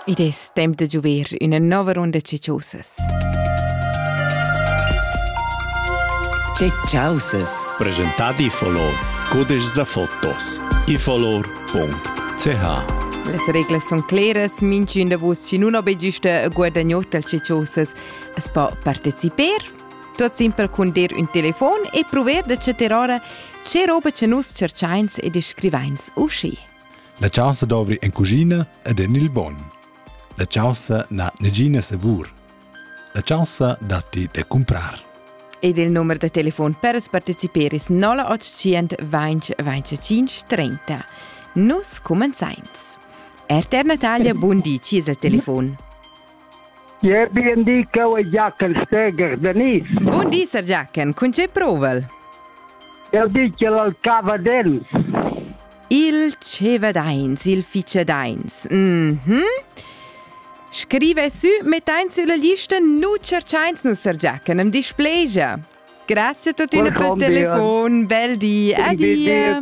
Id es temp da giuver üna nouva runda cichosas. Cichosas. Presentadi iffolor. Codices da fotos. iffolor.ch Las reglas sun cleras, minchün da vus chi nun ho be güsta e guadagnot dal cichosas as po parteciper. Tuot simpel cun der ün telefon e prover da chattar ora che roba cha nus cerchains ed scrivains uschi. La chaussa dovri en cuschina ed en il bogn. La chaussa n'ha negina savur. La chaussa datti da cumprar. Ed il numer da telefon per partecipare es 0800 20 25 30. Nus comenzains. RTR Natalia, bun di, ci es il telefon. Jeu bi in di cheu è Jachen Steger da Nis. Bun di, Sir Jachen, cun tgei provel? Eu di che l'al cava dens. Il cevedains, il ficedains. Mhm. Mm Scrive su, mettein sulla lista, nu cerchains nu Sir Jachen, am displegia. Grazie a tutti per il telefon, bel di, adieu.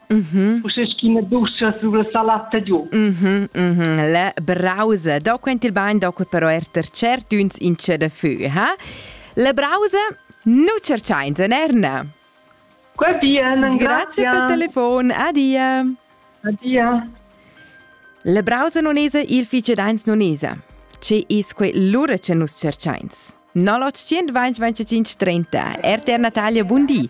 Mm -hmm. Uschè sch'ina duscha sur la salata giu. Mm -hmm, mm -hmm. La brausa. Da quent il bain, da quel però er ter cert uns in c'è da fü, ha? La brausa nu cerciains en Erna. Qua bien, grazie. Grazie per telefon. Adia. Adia. La brausa non esa il fice dains non esa. Ce is quei lura ce nus cerciains. 0800 25 30. RTR Natalia, buondì.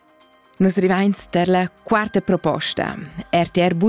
Nus rivains tar la quarta proposta. RTR